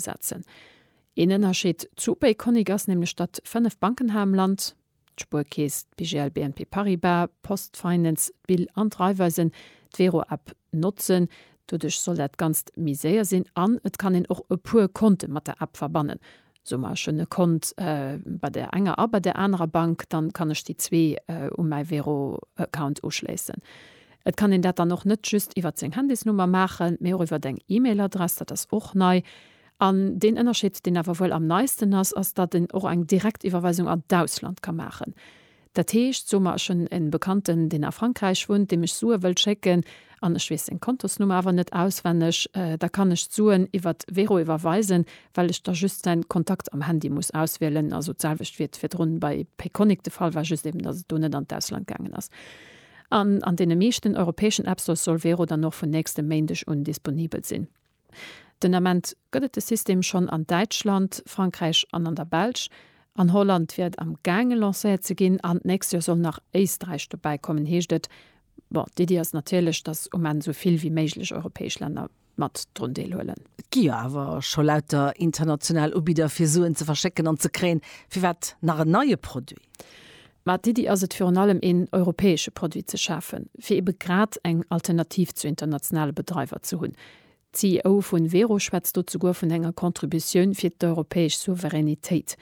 setzen. Een Ënnerscheed zu Upéi-Konnik ass nämlech, datt fënnef Banken hei am Land, d'Spuerkeess, d'BGL, BNP Paribas, d'Post Finance, d'BIL an d'Raiffeisen, d'Vero-App notzen. Doduerch soll dat Ganzt méi séier sinn an et kann een och e puer Konte mat der App verbannen. Soe mer, ech hunn e Kont bei där enger a bei där anerer Bank, dann kann ech déi zwee u mäi Vero-Account uschléissen. Et kann een dat dann och net just iwwert seng Handysnummer maachen, mee och iwwert eng E-Mail-Adress, dat ass och nei. An deen Ënnerscheed, deen awer wuel am neisten ass, ass, datt een och eng Direktiwwerweisung an d'Ausland ka maachen. Dat heescht, soe mer, ech hunn e Bekannten, deen a Frankräich wunnt, deem ech Sue wëll schécken an ech weess seng Kontosnummer awer net auswenneg, da kann ech d'Suen iwwert Wero iwwerweisen, well ech da just säin Kontakt am Handy muss auswielen. Also d'selwecht wéi et virdrun bei Payconiq de Fall war, just eben, datt et do net an d'Ausland gaangen ass. An an deene meeschten europäeschen Appstores soll Vero dann och vun nächstem Méindeg un disponibel sinn. Den Ament gëtt et de System schonn an Däitschland, Frankräich an an der Belsch. An Holland wier et am gaange lancéiert ze ginn an d'nächst Joer soll nach Éisträich dobäikommen, heescht et. Bon, d'Iddi ass natierlech, datt um Enn esou vill wéi méiglech europäesch Länner mat drun deelhuelen. Et gi jo awer scho lauter international Ubidder fir Suen ze verschécken an ze kréien, firwat nach en neie Produit? Mä d'Iddi ass et virun allem een europäesche Produit ze schafen, fir ebe grad eng Alternativ zu internationale Bedreiwer ze hunn. D'CEO vu Wero schwätzt do zuguer vun enger Contributioun fir d'europäesch Souveränitéit.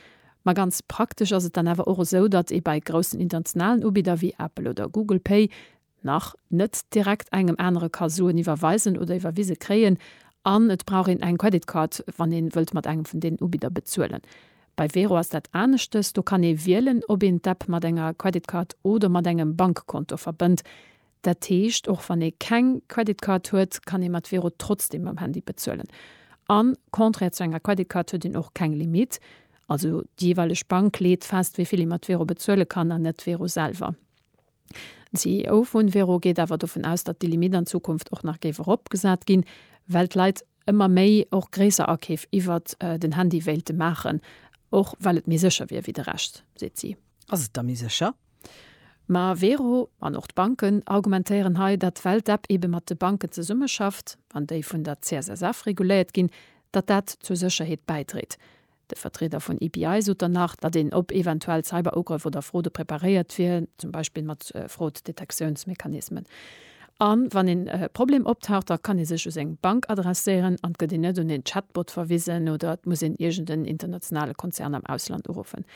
Ma ganz praktesch ass et dann awer och esou, datt ee bei groussen internationalen Ubidder wéi Apple oder Google Pay nach, net direkt engem anere ka soen, iwwerweisen oder iwwerwise kréien, an et brauch een eng Credit Card, wann ee wëllt mat engem vun deenen Ubidder bezuelen. Bei Wero ass dat aneschtes, do kann ee wielen, ob een d'App mat enger Credit Card oder mat engem Bankkonto verbënnt. Dat heescht, och wann ee keng Credit Card huet, kann ee mat Wero trotzdeem mam Handy bezuelen. A contraire zu enger Credit Card huet een och keng Limite, also déi jeeweileg Bank leet fest, wéi vill ee mat Wero bezuele kann, an net Wero selwer. D'CEO vun Vero geet awer dovun aus, datt déi Limitt an Zukunft och nach géif eropgesat ginn, well d'Leit ëmmer méi och gréisser Akeef iwwert den Handy wéilte maachen, och well et méi sécher wier wéi de Rescht, seet si. Ass et da méi sécher? Ma Vero an och d'Banken argumentéieren hei, datt well d'App eebe mat de Banken zesummeschafft an déi vun der CSSF reguléiert ginn, datt dat zur Sécherheet bäidréit. De Vertrieder vun EPI sot dann nach, datt een op eventuell Cyber-Ugrëff oder Fraude preparéiert wier, zum Beispill mat Fraud-Detektiounsmechanismen. A wann een Problem optaucht, da kann ee sech u seng Bank adresséieren an et gëtt een net un een Chatbot verwisen oder et muss een iergend en internationale Konzern am Ausland uruffen.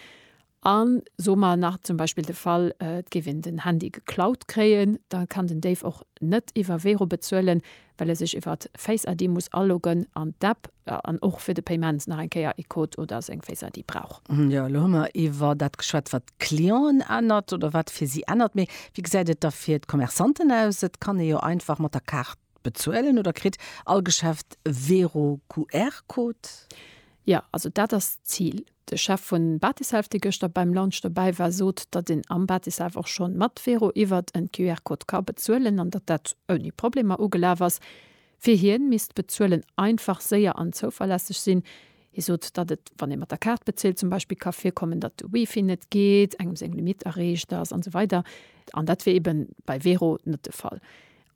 A soe mer nach zum Beispill de Fall, et géif een den Handy geklaut kréien, da kann den Déif och net iwwer Wero bezuelen, well e sech iwwer Face ID muss aloggen an d'App an och fir de Paiement nach eng Kéier ee Code oder seng Face ID brauch. Jo, elo hu mer iwwer dat geschwat, wat d'Clienten ännert oder wat fir si ännert. Mee wéi gesäit et da fir d'Commerçanten aus? Et kann ee jo einfach mat der Kaart Bezuelen oder kritt all Geschäft e Vero QR-Code? Jo, also dat ass d'Zil. De Chef vun Batishelf, dee gëschter beim Launch dobäi war, sot, datt een am Batishelf och schonn mat Vero iwwert en QR-Code ka bezuelen an datt dat ouni Problemer ugelaf ass. Fir hien misst d'Bezuelen einfach, séier an zouverlässeg sinn. Hie sot, datt et, wann ee mat der Kaart bezilt, zum Beispill ka virkommen, datt de Wifi net geet, engem seng Limitt erreecht ass an esou weider. An dat wier eben bei Vero net de Fall.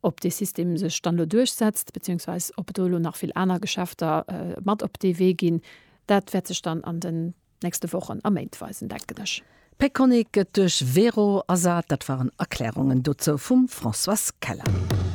ob dee System sech dann elo duerchsetzt, beziehungsweise ob et do elo nach vill aner Geschäfter mat op dee Wee ginn, dat wäert sech dann an den nächste Wochen a Méint weisen, denken ech. Peconiq gëtt duerch Vero ersat. Dat waren Erklärungen dozou vum Françoise Keller.